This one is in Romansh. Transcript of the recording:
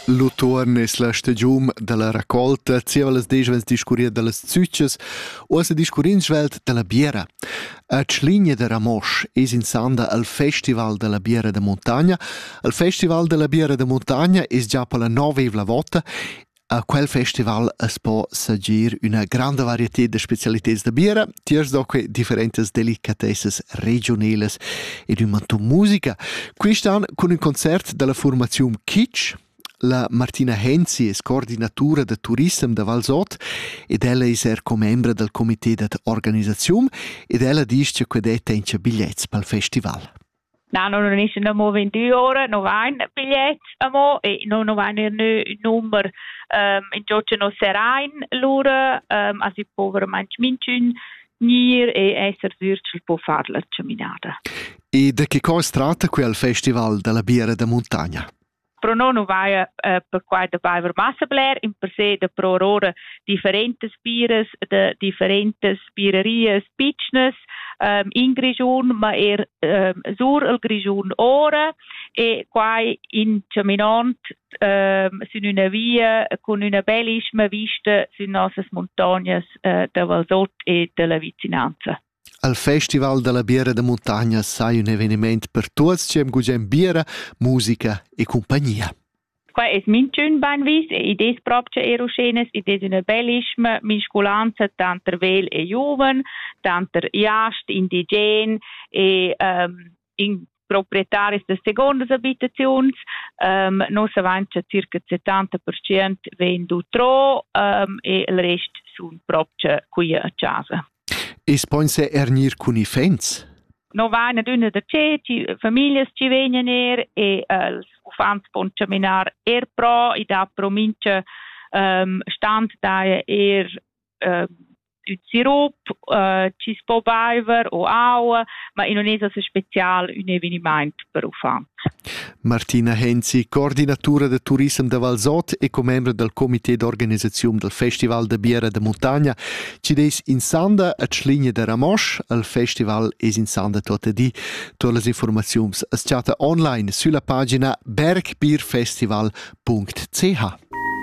L'utuon es la stagiun da la racolta, zieva las desch vegn discurrier da las züchas, uossa discurrin svelt da la biera. A Tschligna da Ramosch es insanda al Festival della Biera da Montagna. Al Festival della Biera da Montagna es già per la novevla vota A quel festival as po sagir üna granda varieted da specialitats da biera. Ti hast do que differentas delicatessas regiunelas ed ün mantun musica. Quist'an cun ün concert dalla fuormaziun Kitsch la Martina Henzi es coordinatura da turissem da Valsot ed ella es er commembra dal comité dad organisaziun ed ella disch cha qued è tencha bigliets pel festival. Na, no nun esen amo vendü ora, no vain bigliets amo e no no vain eir nö ün numer. Ingio cha no serain lura as i po veramaing minchün gnir e esser sür ch'el po far la chaminada. E da che co as tratta quel festival da la biera da muntagna? Pro no nu vaja eh, perquai da baiver massa bler, in per se da proar ora differentas biras da differentas birerias pitschnas ähm, in Grischun, ma er ähm, sur il Grischun ora e quai in chaminant ähm, sin üna via con üna bellissima vista sün nossas muntognas äh, da Valsot e della vicinanza. Al festival dalla biera da muntagna sai ün evenimaint per tuots chi am gugent biera, musica e cumpagnia. Qua es minchün bainvis e id es propcha eir uschänas, id es üna bellischma minculanza tanter vegl e giuven, tanter jast, indigen e ähm, in proprietaris da secondas abitaziuns. Um, nus avain circa 70% vendu tro um, e il rest sun propcha qui a casa. Es pon se ernir cun i fens? No vaina d'una da ce, familias ci vegnan er e uh, els uffants pon caminar er pro, i da promince um, stand da er uh, tüt sirup, äh, chi's po baiver u aua, ma in non es special ün evenimaint per uffants. Martina Henzi, coordinatura da turissem da Valsot e commembra dal comité d'organisaziun dal Festival da Biera da Montagna, ci des insanda a Schlinge da Ramosch, al festival es insanda tota di. Todas las informaziuns as chatta online sulla pagina bergbierfestival.ch.